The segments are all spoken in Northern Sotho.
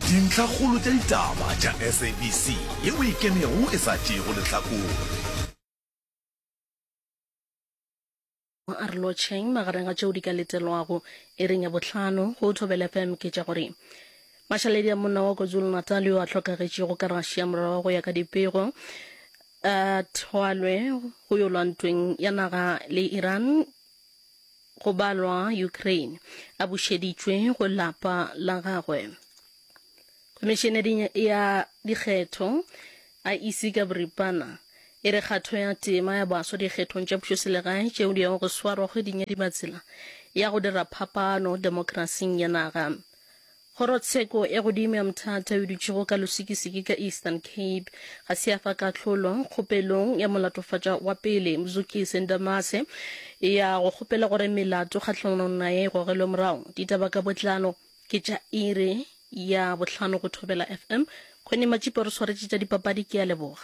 Dintlhakgolo tša ditaba tša SABC ye o e kenego e sa tšeego lehlakore. A re lotšheng magareng ga tšeo di ka letelwago iring ya bohlano go Thobela FM ke tša gore Mashaledi a monna wa KwaZulu-Natal yo a hlokagetšego ka Russia morago ga go ya ka dipego a thwalwe go yo lwa ntweng ya naga le Iran Go balwa Ukraine, a bušeditšwe go lapa la gagwe. Khomišeneri ya dikgetho, IEC, ka boripana e re kgatho ya tema ya baswa dikgethong tša pušoselegae tšeo di yago go swarwa kgweding ya Dibatsela ya go dira phapano demokrasing ya naga. Kgorotsheko e godimo ya Mthatha yo dutšego ka Losikisiki ka Eastern Cape ga se ya fa kahlolo kgopelong ya molatofatša wa pele Mzukisi Ndamase ya go kgopela gore melato kgahlanong naye e gogelwe morago. Ditaba ka botlalo ke tša iri ya bohlano go Thobela FM. Connie Matšipa o re swaretše tša dipapadi, ke a leboga.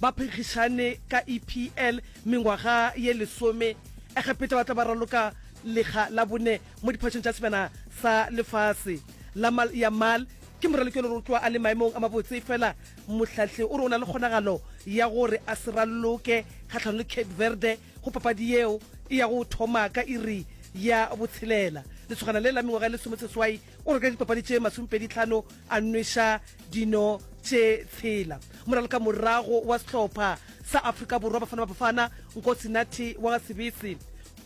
Ba phenkgišane ka EPL mengwaga ye lesome. Egepeta ba tla ba raloka lega la bone mo diphatšong tša sebjana sa lefase. Lamal Yamal ke moraloki yo lerotwa a le maemong a mabotse efela mohlahli o re o na le kgonagalo ya gore a se raloke kgahlanong le Cape Verde go papadi yeo e yago thoma ka iri ya botshelela. Lesogana le la mengwaga ye lesomeseswai O re ka dipapadi tše masomepedi tlhano a nweša dino tše tshela. Moraloka morago wa sehlopha sa Afrika Borwa Bafana Bafana, Nkosi Nathi wa ga Sebese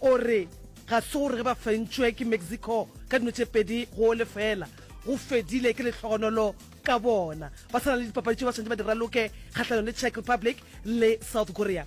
o re ga se gore ge ba fentšwe ke Mexico ka dino tše pedi go o lefela, go fedile ke lehlogonolo ka bona. Ba sa na le dipapadi tšeo ba swanetše ba di raloke kgahlano le Czech Republic le South Korea.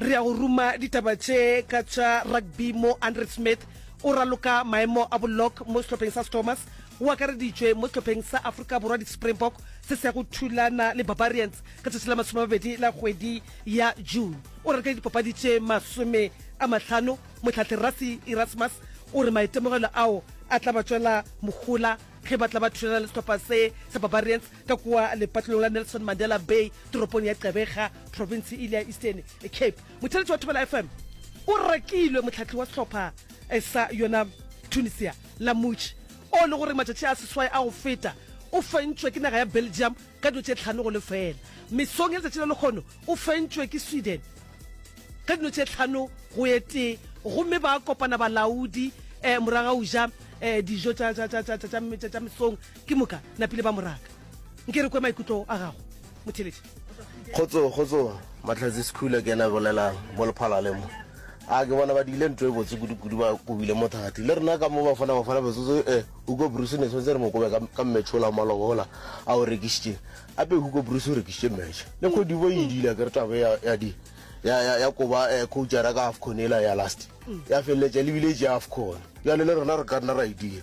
re ya go ruma ditaba tše ka tša rugby mo andre smith o raloka maemo a bolok mo sehlopheng sa stormers o akareditšwe mo sehlopheng sa aforika borwa di-springbok se se ya go thulana le barbarians ka tšatši la masome mabedi la kgwedi ya june o reke dipapadi tše masome a mahlano motlhatlhe rasi erasmus o re maitemogelo ao a tla ba tšwela mohola ge ba tla ba thulana le sehlopha se sa barbarians ka kua lepatlelong la Nelson Mandela Bay toropong ya Gqeberha, province e ile ya Eastern Cape. Motheletši wa Thobela FM o rekilwe mohlahli wa sehlopha eh, sa yona Tunisia la Mutši o le gore matšatši a seswai a go feta o fentšwe ke naga ya Belgium ka dilo tše tlhano go lefela. Mesong ya letšatši la lekgono o fentšwe ke Sweden ka dino tše tlhano go ye tee gomme ba kopana balaodi um eh, moragauja um eh, dijo tša mesong Ke moka napile ba moraka. Nke re kwe maikutlo a gago, Motheletši. Kgotso, kgotso, Mahlatse Sekhula ke ena a bolelago, mo lephalale mo. A ke bona ba diile ntwa e botse kudu-kudu, ba kobile mo thati. Le rena ka mo ba fona, ba fona metsotso e. Hugo Broos ne tshwanetse re mo kobe ka, ka match ola wa maloba ola a o rekišitše. Ape Hugo Broos o rekišitše match. Le Kgodibo e idile, akere taba e ya, ya di, ya, ya, ya koba eh, coachara ka Afcon ela ya last. Ya feleletša e lebile e tšea Afcon. Bjale le rena re ka nna ra e dia.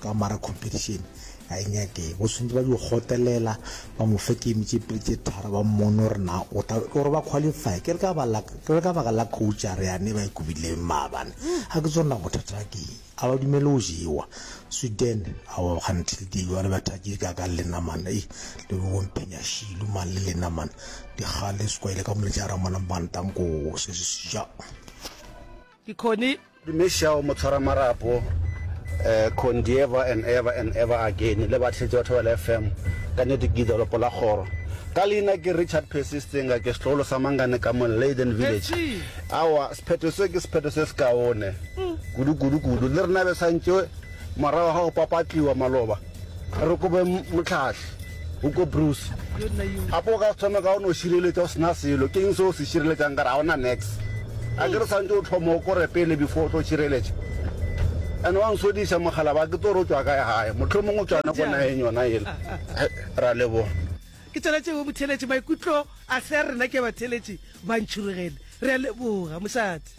Ka mara competition ga e nyake bo swantse ba di gotelela ba mo fe game tše pedi tše tharo ba mmone gore na o tla gore ba qualify ke re ka ba la ke re ka baka la coach a re yane ba ikobile maabane a ke tsona bothata ba ke a ba dumele o jewa Sweden a wa until di jwale ba thatše ka ka lena mana e le bo mpenya shilu man le lena mana di gale se kwa ile ka moletša ra mona bantang ko se se ja Ke Connie. Dumešago Motshwaramarapo, eh, Condi ever and ever and ever again, le bahletši ba Thobela FM, ka nnete ke Gidolopo la Kgoro. Ka leina ke Richard Percy Stenga, ke setlogolo sa Mangane ka mo Leiden Village. Awa, sephetho se ke sephetho se sekaone, kudu kudu kudu, le rena be santše morago ga go papatliwa maloba. A re kobe mohlahli, Hugo Broos, gape o ka se thome ka go no šireletša o se na selo. Ke eng seo o se šireletšang ka re ga o na nex? A ke re santše o tlhoma o kore pele before o tlo šireletša? Ene wa nswediša mogala ba ke tso re o tšwa kae gae, mohlomong o tšwane ko nageng yona yela. Ra leboga. Ke tsona tšeo botheletši maikutlo a se a rena ke batheletši ba ntšhurugele. Re a leboga, mošate.